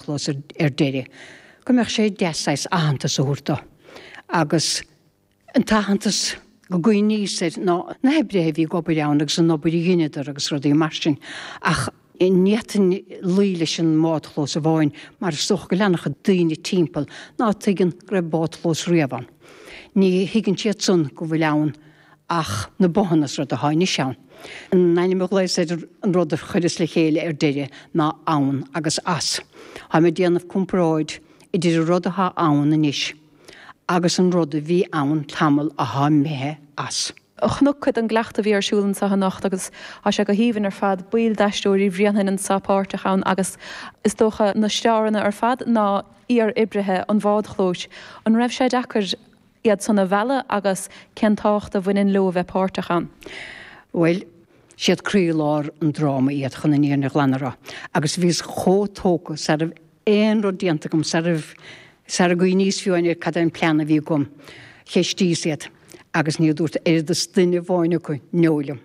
chlos ar deireadh go mbeadh sé deas saghas aitheantas a thabhairt do agus an t-aitheantas go gcuimhníos air ná na hoibrithe a bhí ag obair ann agus an obair a dheineadar agus rudaí mar sin ach ní fhéadfá luí leis an mbádchlós amháin mar is dócha go bhfuil ana-chuid daoine timpeall ná tuigeann go raibh bádchlós riamh ann. Ní thuigeann siad san go bhfuil ann Ach na botháin is rud atá anois ann. An ainm a ghlaos ar an rud a chuireas le chéile ar deireadh ná ann agus as. Táim ag déanamh comparáid idir an rud atá ann anois agus an rud a bhí ann tamall athá imithe as. Chonac cuid den gcleachtadh a bhí ar siúl ansa anocht agus thá sé go haoibhinn ar fad. Baill d'Aisteoirí Bhréanainn anso páirteach ann agus is dócha na staranna ar fad ná iar-oibrithe an bhádchlóis. An raibh sé deacair? iadsan a mhealladh agus cén tábhacht a bhaineann leo a bheith páirteach ann? Bhuel, siad croílár an dráma iad chun an fhírinne ghlan a rá agus bhíos chomh tógtha sara raibh aon rud déanta agam, sara raibh, sara gcuimhníos fiú ar cad é an plean a bhí agam. Cheistíos iad agus níor dúirt oiread is duine amháin acu 'no' liom.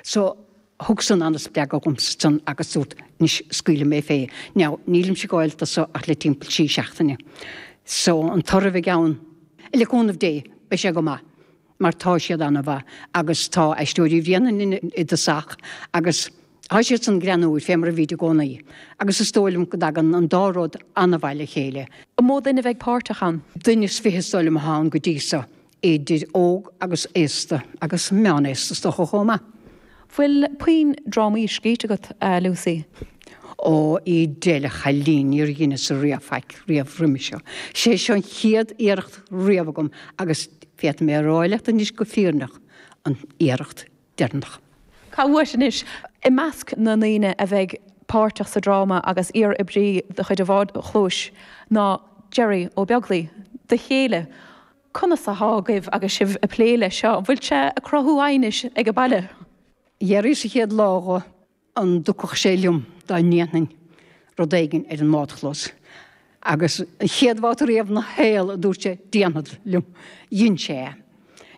So, Thug san an-spreagadh dhomsa ansan agus dúrt, 'Anois, scaoilfidh mé fé. Now, nílimid ag gabháilt do so ach le timpeall trí seachtaine. So, an toradh a bheidh ann? Le cúnamh Dé, beidh sé go maith. Mar tá siad an-mhaith. Agus tá Aisteoirí Bhréanainn i dtosach agus tá siad san greannmhar fé mar a bhíd i gcónaí. Agus is dóigh liom go dtagann an dá rud an-mhaith le chéile. An mó duine a bheidh páirteach ann? Duine is fiche is dóigh liom atá ann go dtí so. idir óg agus aosta agus meán aosta is dócha chomh maith. Bhfuil puinn drámaí scríte agat, a Lucy? Ó, i ndomhnach a chailín, níor dheineas-sa riamh faic riamh roimis seo. Sé seo an chéad iarracht riamh agam agus féadfaidh mé a rá leat anois go fírinneach, an iarracht deireannach. Cá bhfios duit anois? I measc na ndaoine a bheidh páirteach sa dráma agus iar-oibrí de chuid an bhádchlóis ná Derry Ó Beaglaoi, do chéile. Conas athá agaibh agus sibh a' plé leis seo? An bhfuil sé a' cothú aighnis ag a' baile? D'fhiafraíos an chéad lá dho, an dtiocfadh sé liom dá ndéanfainn rud éigin ar an mbádchlós, agus an chéad bhabhta riamh 'na shaol a dúirt sé déanfad liom, dhein sé é.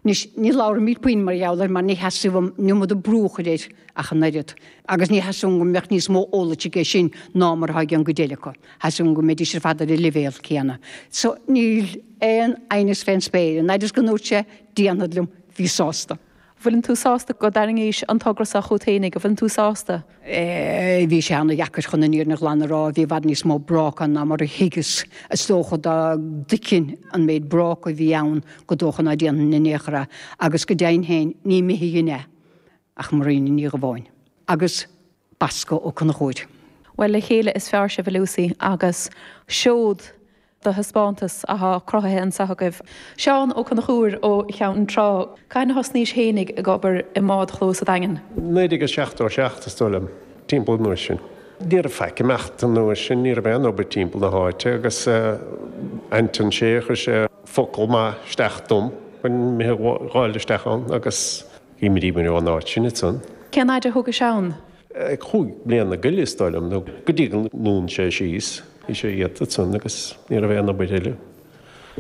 Anois ní labhraimíd puinn mar gheall air mar ní theastaigh uaim an iomad brú a chur air ach an oiread, agus ní theastaigh uaim go mbeadh níos mó eolais aige sin ná mar athá ag an gcuid eile acu, theastaigh uaim go mbeidís ar fad ar an leibhéal céanna. So níl. aon aighneas fén spéir. An fhaid is go ndúirt sé 'déanfad liom' bhíos sásta. bhfuileann tú sásta go dtarraingís an togra so chút fhéinig? An bhfuileann tú sásta? Bhí sé ana-dheacair chun an fhírinne ghlan a rá. Bhí i bhfad níos mó bráca ann ná mar a thuigeas. Is dócha dá dtuigfinn an méid bráca a bhí ann gur dócha ná déanfainn in aon chor é. Agus go deimhin féin ní mithid é. Le Marina Ní Dhubháin. Agus Bascó Ó Conchúir. Bhuel, le chéile is fearr sibh ab ea Lucy agus seod de thaispeántas athá cruthaithe anseo agaibh. Seán Ó Conchúir ó Cheann Trá, cathain a thosnaís fhéinig ag obair i mbádchlós an Daingin? 1977 is dóigh liom, timpeall an uair sin. Ní raibh faic imeacht an uair sin, ní raibh aon obair timpeall na háite agus Anton Sé chuir sé focal maith isteach dom go mbeinn ag fáil isteach ann agus. B'in mar a fuaireas an áit sin ansan. Cén fhaid a thugais ann? Cúig bliana nó tuilleadh is dóigh liom nó go dtí gur dhún sé síos. Bhí sé iata ansan agus ní raibh aon obair eile.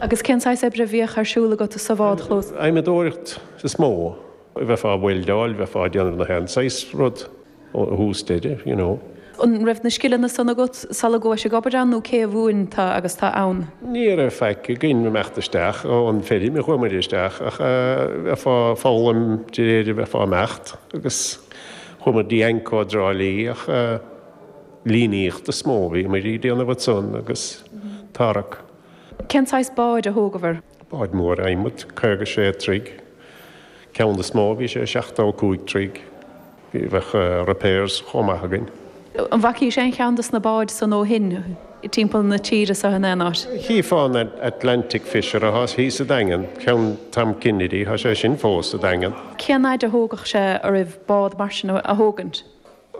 Agus cén saghas oibre a bhíodh ar siúl agat sa bhádchlós? Adhmadóireacht is mó. Bheifeá ag boltáil, bheifeá ag déanamh na haon saghas rud. ó thús deireadh, you know. An raibh na scileanna san agat sula gabhais ag obair ann nó cé a mhúin duit agus tú ann? Ní raibh faic againn ag imeacht isteach ón feirm, chuamair isteach ach bheifeá ag foghlaim de réir a bheifeá ag imeacht agus chuamair dtí Anco i dTrá Lí ach líníocht is mó a bhíomair ag déanamh ansan agus tarrac. Cén saghas báid a thógabhair? Báid mhóra adhmaid, 56 troigh, ceann is mó, bhí sé 75 troigh. Bheadh repairs chomh maith againn. An bhfacaís aon cheann de na báid san ó shin, timpeall na tíre seo in aon áit? Chífeá an Atlantic Fisher athá thíos sa Daingean, ceann Tom Kennedy, thá sé sin fós sa Daingean. Cén fhaid a thógadh sé oraibh bád mar sin a thógaint?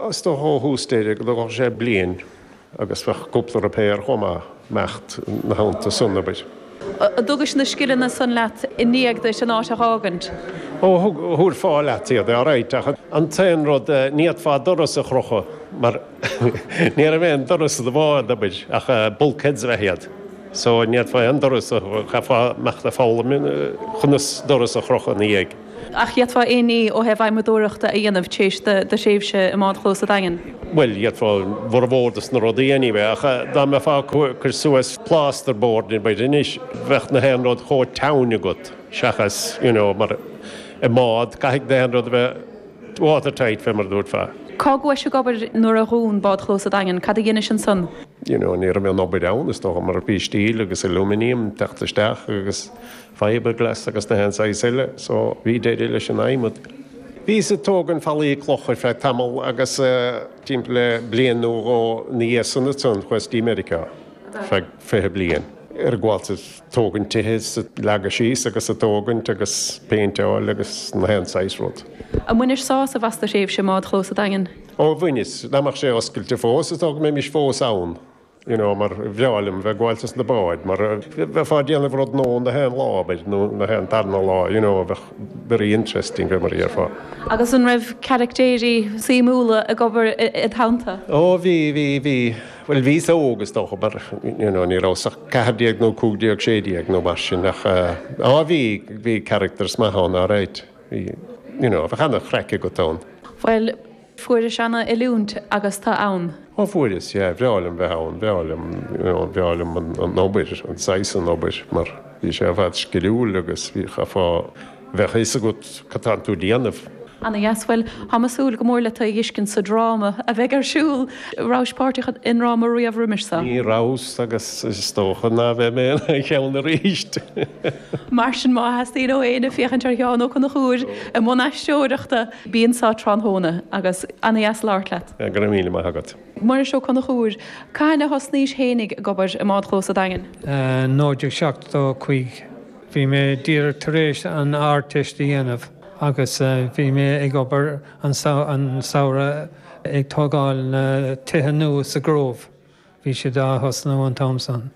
Is dócha ó thús deireadh go dtógfadh sé bliain agus bheadh cúpla repair chomh maith, imeacht ina theannta san, abair. An dtugais na scileanna san leat i ndiaidh duit an áit a dh'fhágaint? Ó, thabharfá leat iad, all right, ach an t-aon rud, ní fhéadfá doras a chrochadh mar ní raibh aon doras sa bhád, abair, ach bulkheads a bheadh iad. So, ní fhéadfá aon doras a, chaithfeá imeacht ag foghlaim conas doras a chrochadh ina dhiaidh. Ach d'fhéadfá aon ní ó thaobh adhmadóireachta a dhéanamh tar éis do thréimhse i mbádchlós a' Daingin? Bhuel, d'fhéadfá mórán de sna rudaí a dhéanamh, ach dá mbeifeá ag cur suas plasterboard abair anois, bheadh na haon rud chomh teann agat seachas, you know, mar i mbád, caithfidh na haon rud a bheith watertight, fé mar a dúirt fear. Cár ghabhais ag obair nuair a dhún bádchlós a' Daingin? Cad a dheinis ansan? You know, ní raibh aon obair ann, is dócha, mar bhí steel agus aluminium ag teacht isteach agus. fiberglass agus na haon saghas eile so bhí deireadh leis an adhmad. Bhíos ag tógaint fallaí cloch ar feadh tamall agus timpeall le bliain nó dhó ina dhiaidh san ansan chuas dtí Meiriceá ar feadh fiche bliain. Ag gabháil do thógaint tithe is ag leagadh síos agus ag tógaint agus péinteáil agus na haon saghas rud. An mbainis sásamh as do thréimhse i mbádchlós an Daingin? Ó bhaineas, dá mbeadh sé oscailte fós is dócha go mbeinnse fós ann. you know mar bhreá liom bheith gabháilte sna báid mar bheifeá ag déanamh rud nua nach aon lá ar bith nó nach aon darna lá you know bheadh very interesting bheith mar a dhéarfá. Agus an raibh caractéirí suimiúla ag obair id theannta? Ó bhí bhí bhí bhuel bhí sa óg is dócha mar you know ní rabhas ach 14 nó 15 16 nó mar sin ach ó bhí bhí characters maith ann alright bhí you know bheadh ana chraic agat ann. Bhuel Fuaireas ana oiliúint agus tú ann. Ó fuaireas, yeah, bhreá liom bheith ann, bhreá liom, you know, bhreá liom an obair, an saghas an obair mar bhí sé i bhfad sciliúil agus bhí, chaithfeá, bheadh fhios agat cad a bhíonn tú déanamh. Ana dheas, bhuel, táim ag súil go mór le tú a fhiscint sa dráma a bheidh ar siúl. Rabhais páirteach i ndráma riamh roimis sa? Ní rabhas agus is dócha ná beidh mé in aon cheann arís. Mar sin má theastaíonn ó éinne féachaint ar Sheán Ó Conchúir i mbun aisteoireachta, Bíonn anso tráthnóna agus. Ana dheas labhairt leat. Go raibh míle maith agat. Muiris Ó Conchúir, Cathain a thosnaís fhéinig ag obair i mbádchlós an Daingin? 1975. Bhí mé díreach tar éis an Ardteist a dhéanamh agus bhí mé ag obair an samhradh ag tógáil na tithe nua sa Grove. Bhí siad a' thosnú an t-am san.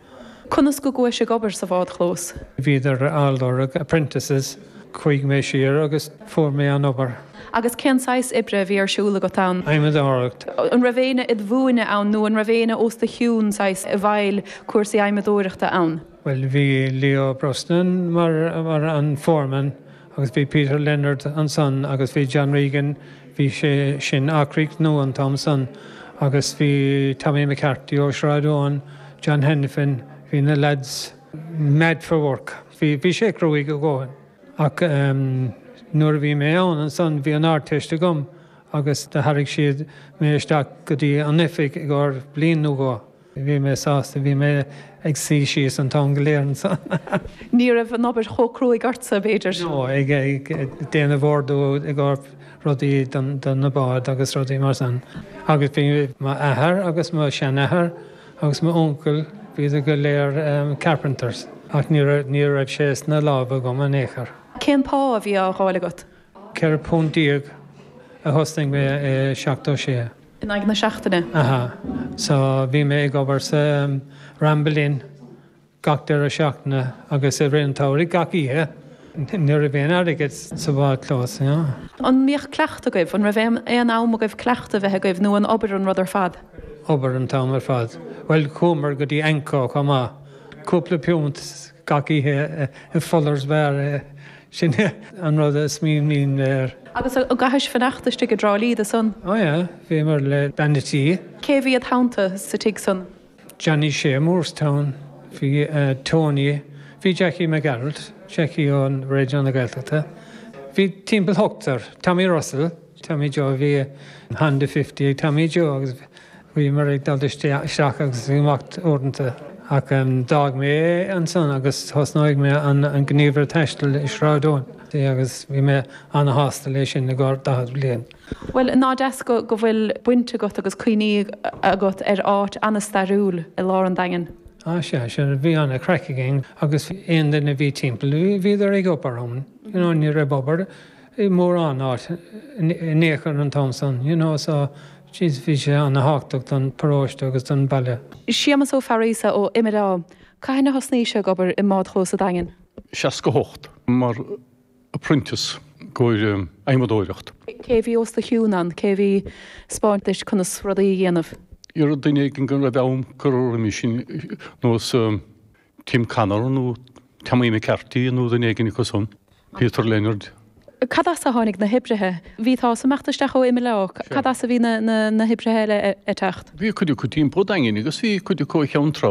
Conas go gabhais ag obair sa bhádchlós? Bhíodar a' lorg apprentices. Chuaigh mé siar agus fuair mé an obair. Agus cén saghas oibre a bhí ar siúl agat ann? Adhmadóireacht. An raibh éinne id mhúineadh ann nó an raibh éinne os do chionn, saghas, i bhfeighil cúrsaí adhmadóireachta ann? Bhuel bhí Leo Brosnan mar an foreman. Agus bhí Peter Leonard ansan agus bhí John Regan, bhí sé sin ag rá, nua an t-am san agus bhí Tommy McCarthy ó Shráid Eoin, John Hanafin, bhí na lads mad for work. Bhí, bhí sé cruaigh a dhóthain. Ach ehm nuair a bhí mé ann ansan bhí an Ardteist agam agus do tharraig siad mé isteach go dtí an oifig i gcóir bliain nó dhó. Bhí mé sásta. Bhí mé ag suí síos an t-am go léir ansan. Ní raibh an obair chomh cruaigh ortsa, b'fhéidir? No, ag déanamh ordú i gcomhair rudaí do na báid agus rudaí mar san. Agus bhí mo athair agus mo sheanathair agus m'uncail, bhíodar go léir carpenters. Ach ní raibh sé sna lámha agam in aon chor. Cén pá a bhí á dh'fháil agat? £14 a thosnaigh mé i 76. In aghaidh na seachtaine? Aha. So bhí mé ag obair sa Ramble Inn gach deireadh seachtaine agus i rith an tsamhraidh gach oíche. Ní raibh aon airgead sa bhád clós, you know. An mbíodh cuileachta agaibh? An raibh aon am agaibh cuileachta a bheith agaibh nó an obair an rud ar fad? Obair an t-am ar fad. Bhuel chuamar go dtí AnCO chomh maith. Cúpla piúnt. Gach oíche i Fuller's Bar é, sin é an rud is mian linn air. Agus an gcaithis fanacht istigh i dTrá Lí do san? Ó yeah, bhíomar le bean a tí. Cé a bhí id theannta sa tigh san? Johnny Shea i Moorestown, bhí Tony, bhí Jackie Mac Gearailt, Jackie ó Raidió na Gaeltachta, bhí timpeall ochtar, Tommy Russell, Tommy Joe, bhí Honda Fifty ag Tommy Joe agus. Bhíomar ag dul isteach agus amach uaireanta ach d'fhág mé é ansan agus thosnaigh mé an gníomhaire taistil i Sráid Eoin agus bhí mé ana-shásta leis sin i gcomhair daichead bliain. Bhuel, ná deas go bhfuil baint agat agus cuimhní agat ar áit ana-stairiúil i lár an Daingin? Á sea, sin, bhí ana-chraic againn agus aon duine a bhí timpeall, bhíodar ag obair ann, you know, ní raibh obair. i mórán áit in aon chor an t-am san, you know so jeez bhí sé ana thábhachtach don paróiste agus don baile. Séamus Ó Fearaíosa ó Imileá. Cathain a thosnaís-se ag obair i mbádchlós sa Daingean? 68, mar apprentice i gcomhair adhmadóireacht. Cé a bhí os do chiúnn ann? Cé a bhí ag spáint duit conas rudaí a dhéanamh? Dhera duine éigin go raibh a am curtha roimis sin nó is Tim Connor nó Tommy McCarty nó duine éigin acu san. Peter Leonard. Cad as a tháinig na hoibrithe? Bhí tusa ag imeacht isteach ó Imileá ach. Cad as a bhí na hoibrithe eile ag teacht? Bhí cuid acu timpeall an Daingin agus bhí cuid acu ó Cheann Trá.